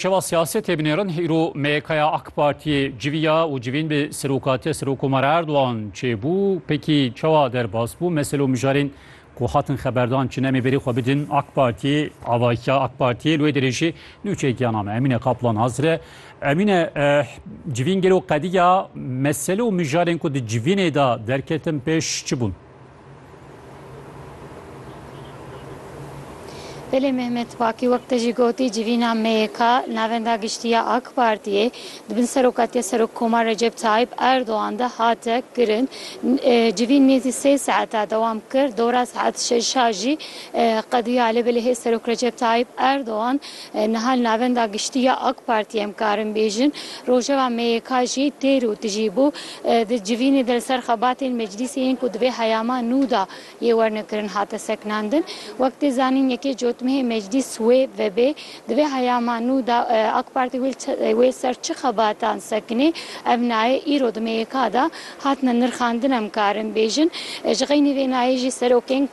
Şeva siyasetê binêrin îro MYKya AK Partiyê civiya û civîn bi Serokatiya Serokomara Erdogan çêbû, pekî çawa derbas bû, mesele û mijarên ku hatin xeberdan çin em ê berê xwe bidin AK Partiyê, avahiya AK Partiyê li wê derê jî nûçekiya name Emîne Kaplan hazir e. Emîne civîn gelo qediya mesele û mijarên ku di civînê de derketin pêş çi bûn? Belê Mehmet Pakî wek te jî gotî civîna MYK navenda giştî ya AK Partiyê di bin serokatiya Serokkomar Recep Tayyîp Erdogan de hate kirin. Civîn nêzî sê saeta dewam kir. Dora saet şeş a jî qediya lê belê hê Serok Recep Tayyîp Erdogan niha li navenda giştî ya AK Partiyê em karin bêjin rojeva MYK jî têr û tijî bû. Di civînê de li ser xebatên meclîsê yên ku di vê heyama nû de yê wernekirin hate sekinandin. Wek tê zanîn yekê cotmehê meclîs wê vebê. Di vê heyama nû de AK Partî wê li ser çi xebatan sekinê ev nayê îro di MYK de hatine nirxandin em karin bêjin. Ji xeynî vê nayê jî serokên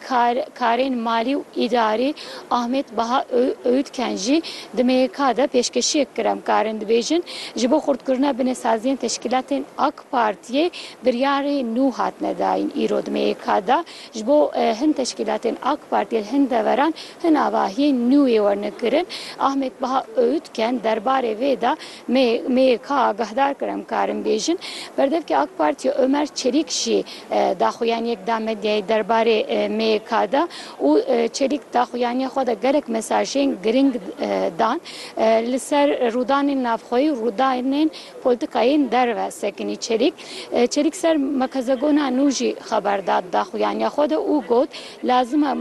karên malî û îdarî, Ahmet Baha Öğütken jî di MYK de pêşkeşiyek kir. Em karin dibêjin ji bo xurtkirina binesaziyên teşkîlatên AK Partiyê biryarê nû hatine dayîn. Îro di MYK de ji bo hin teşkîlatên AK Partiyê li hin deveran hin avahiyên nû yê werne kirin. Ahmet Baha Öğütken derbarê vê de, Me yê ka agahdar kir em karin bêjin. Berdevkê AK Partiyê Omer Çelîk jî daxuyaniyek da medyayê derbarê me yê ka de û Çelîk daxuyaniya xwe de gelek mesajên giring dan. Li ser rûdanên navxweyî û rûdanên polîtîkayên derve sekinî Çelîk. Çelîk ser merkezegona nû jî xeber da di daxuyaniya xwe de û got, Lazim e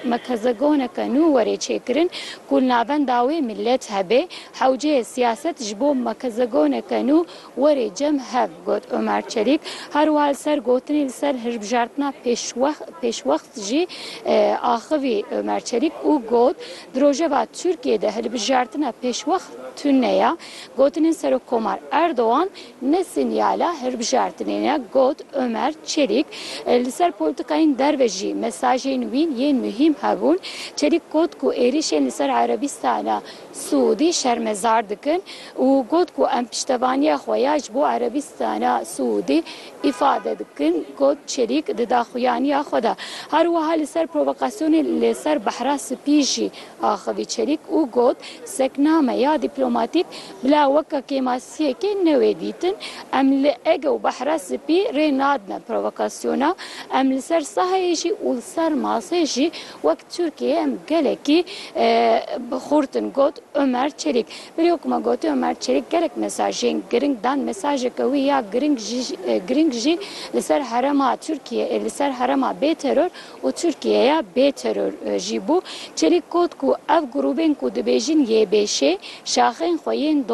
mekezegoneke nû were çêkirin ku li navenda wê milet hebe. Hewceyê siyaset ji bo mekezegoneke nû were cem hev, got Omer Çelîk. Her wiha li ser gotinê li ser hilbijartina pêşwext jî axivî Omer Çelîk û got, Di rojeva Tirkiyeyê de hilbijartina pêşwext tune ye. Gotinên Serokkomar Erdogan, Ne sînyala hilbijartinê ne, got Omer Çelîk. Li ser polîtîkayên derve jî mesajên wî yên muhîm hebûn. Çelîk got ku êrîşên li ser Erebîstana Siûdî şermezar dikin û got ku em piştevaniya xwe ya ji bo Erebîstana Siûdî îfade dikin. Got Çelîk di daxuyaniya xwe de her wiha li ser provokasyonên li ser Behra Spî jî, axivî Çelîk û got, Sekname ya dîplomatîk bila weke kêmasiyekê newê dîtin. Em li Ege û Behra Spî rê nadine provokasyona. Em li ser saheyê jî û li ser masê jî wek Tirkiyeyê em gelekî bi xurt in, got Omer Çelîk. Berê wek ku me gotiye Omer Çelîk gelek mesajên giring dan. Mesajeke wî ya giring jî li ser herêma Tirkiyeyê, li ser herêma bêteror û Tirkiyeya bê teror jî bû. Çelîk got ku ev grûbên ku dibêjin YBŞ'ê, şaxên xwe yên